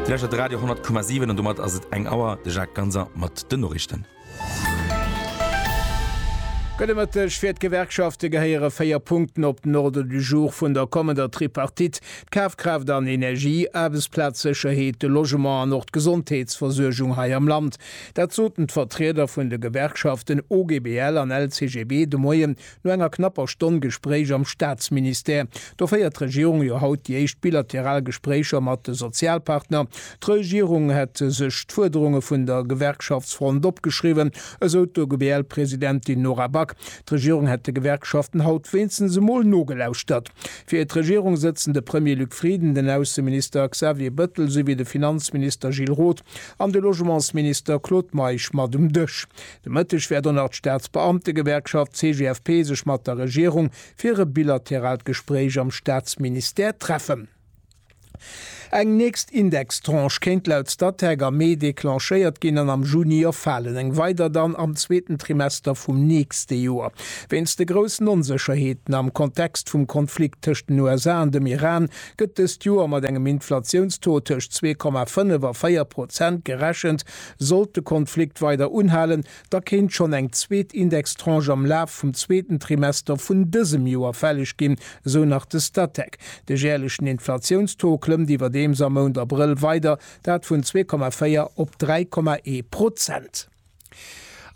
Dir läschert de Radio 10,7 an domat ass et eng Auer. De Jacques Ganser mat den Noriichten. Gudde Mëtteg, Fir d'Gewerkschafte gehéiere véier Punkten op den Ordre du jour vun der kommender Tripartite, d'Kafkraaft an Energie, Aarbechtsplazsécherheet, de Logement an och d'Gesondheetsversuergung hei am Land. Dat soten d'Vertrieder vun de Gewerkschaften OGBL an LCGB de Moien No enger knapper Stonn Gespréich am Staatsministère, do féiert d'Regierung jo haut déi éischt bilateral Gespréicher mat de Sozialpartner. D'Regierung hätt sech d'Fuerderunge vun der Gewerkschaftsfront opgeschriwwen, esou d'OGBL-Presidentin Nora Back. D'Regierung hätt de Gewerkschaften haut wéinstens emol nogelauschtert. Fir d'Regierung sëtzen de Premier Luc Frieden, den Ausseminister Xavier Bettel esouwéi de Finanzminister Gilles Roth an de Logementsminister Claude Meisch mat um Dësch. De Mëtteg wäert och nach d'Staatsbeamtegewerkschaft CGFP sech mat der Regierung fir e bilateraalt Gespréich am Staatsministère treffen. Eng nächst Indextranche kéint laut Statec am Mee declenchéiert ginn an am Juni erfalen, eng weider dann am zweeten Trimester vum nächste Joer. Wéinst de groussen Onsécherheeten am Kontext vum Konflikt tëscht den USA an dem Iran gëtt dëst Joer mat engem Inflatiounstaux tëscht zwee Komma fënnef a véier Prozent gerechent, Sollt de Konflikt weider unhalen, da kéint schonn eng zweet Indextranche am Laf vum zweeten Trimester vun dësem Joer fälleg ginn, esou nach de Statec. De jäerlechen Inflatiounstaux klëmmt iwwerdeems am Mount Abrëll weider, dat vun zwee Komma véier op dräi Komma ee Prozent.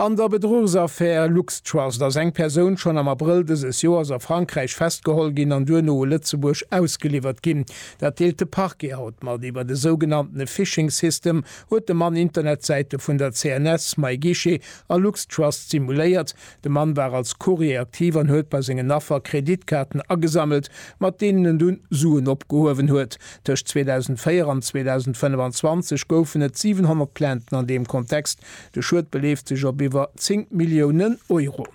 An der Bedruchsaffär LuxTrust ass eng Persoun schonn am Abrëll dëses Joers a Frankräich festgeholl ginn an duerno u Lëtzebuerg ausgeliwwert ginn. Dat deelt de Parquet haut mat. Iwwert e sougenannte Phishing System huet de Mann Internetsäite vun der CNS, MyGuichet a LuxTrust simuléiert. De Mann war als Courrier aktiv an huet bei sengen Affer Kreditkaarten agesammelt, mat deenen en dunn Suen opgehuewen huet. Tëscht 2004 an 2025 goufen et 700 Plainten an deem Kontext, De Schued beleeft sech op iwwer 10 Milliounen Euro.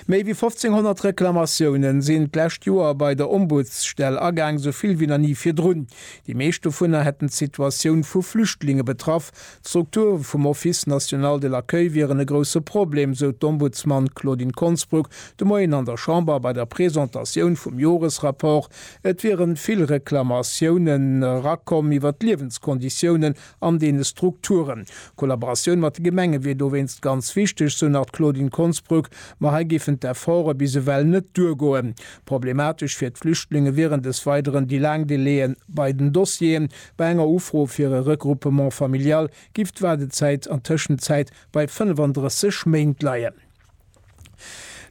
Méi wéi 1.500 Reklamatioune sinn d'lescht Joer bei der Ombudsstell agaang, esou vill wéi nach ni virdrun. Déi meescht dovunner hätten d'Situatioun vu Flüchtlinge betraff. D'Strukture vum Office national de l'accueil wieren e grousse Problem, sou d'Ombudsman Claudine Konsbruck de Moien an der Chamber bei der Presentatioun vum Joresrapport. Et wiere vill Reklamatiounen erakomm iwwer d'Liewenskonditiounen an deene Strukturen. D'Kollaboratioun mat de Gemenge wier dowéinst ganz wichteg, sou nach d'Claudine Konsbruck. Ma hei géifen d'Efforte bis ewell net duergoen. Problematesch fir d'Flüchtlinge wieren des Weideren déi laang Delaien bei den Dossieren. Bei enger Ufro fir e Regroupement familial giff d'Waardezäit an Tëschenzäit bei 35 Méint leien.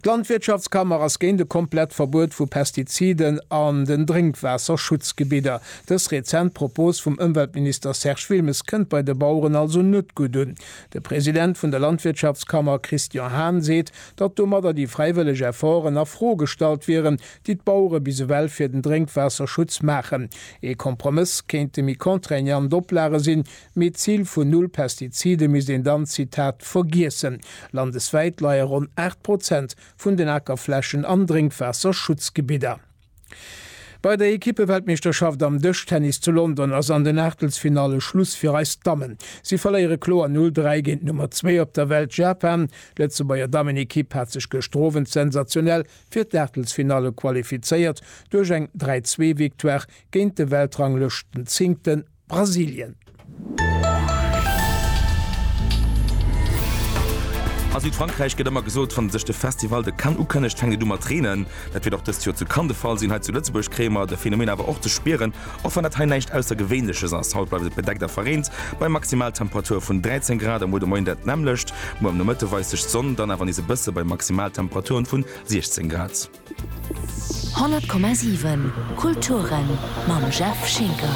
D'Landwirtschaftskammer ass géint e komplett Verbuet vu Pestiziden an den Drénkwaasserschutzgebidder. Dës rezent Propos vum Ëmweltminister Serge Wilmes kënnt bei de Baueren also net gutt un. De President vun der Landwirtschaftskammer Christian Hahn seet, datt domadder déi fräiwëlleg Efforten a Fro gestallt wieren, déi d'Bauere bis ewell fir den Drénkwaasserschutz maachen. Ee Kompromëss kéinte méi contraignant Oplage sinn, Mee d'Zil vun Null Pestizide misst een dann, Zitat, vergiessen. Landeswäit leie ronn 8 Prozent vun den Akerflächen an Drénkwaasserschutzgebidder. Bei der Ekippeweltmeeschterschaft am Dëschtennis zu London ass an den Aachtelsfinalle Schluss fir eis Dammen. Si verléiere kloer 0, 3 géint d'Nummer zwee op der Welt, Japan. D'Lëtzebuerger Dammenekipp hat sech gëschter Owend sensationell fir d'Aachtelsfinalle qualifizéiert duerch eng 3, 2 Victoire géint de Weltranglëschtenzéngten. Brasilien. A Südfrankräich gëtt ëmmer gesot, wann sech de Festival de Cannes ukënnegt, fänkt et u mat reenen. Dat wier och dëst Joer zu Cannes de Fall sinn. Hei zu Lëtzebuerg kréie mer de Phänomen awer och ze spieren, och wann dat hei näischt Aussergewéinleches ass. Haut bleift et bedeckt a verreent bei Maximaltemperature vun 13 Grad. Am Muer de Moien dat nämmlecht. Muer am Nomëtte weist sech d'Sonn dann awer nees e bësse bei Maximaltemperaturen vun 16 Grad. 100,7 Kulturen mam Jeff Schinker.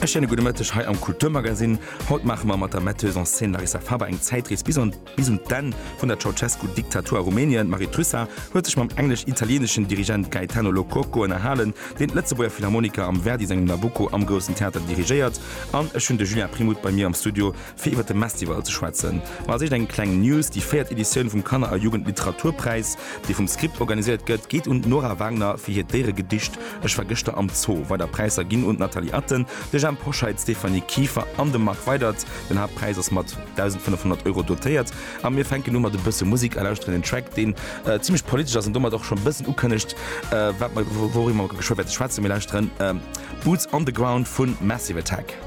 E schéine gudde Mëtteg hei am Kulturmagasinn. Haut maache mer mat der Metteuse en scène Larissa Faber eng Zäitrees bis an bis un d'Enn vun der Ceausescu-Diktatur a Rumänien. D'Marie Trussart huet sech mam englesch-italieeneschen Dirigent Gaetano Lo Cuoco ënnerhalen, deen d'Lëtzebuerger Philharmoniker am Verdi sengem Nabucco am Groussen Theater dirigéiert. An ech hunn de Julien Primout bei mir am Studio, Fir iwwer de Mestival ze schwätzen, ma als éischt eng kleng News, Déi véiert Editioun vum Kanner a Jugendliteraturpräis, dee vum Script organiséiert gëtt, geet un d'Nora Wagner fir hiert Déieregedicht Ech war gëschter am Zoo. Weider Präisser ginn un d'Nathalie Atten, de Jhemp Hoscheit, d'Stéphanie Kieffer an de Marc Weydert. Den Haaptpräis ass mat 1.500 Euro dotéiert. A mir fänken u mat e bësse Musek a lauschteren een Track, deen zimlech politesch ass an domat och schonn e bëssen ukënnegt, wat mer, wouriwwer mer geschwë wäerte schwätzen. Mir lauschteren Boots on the Ground vu Massive Attack.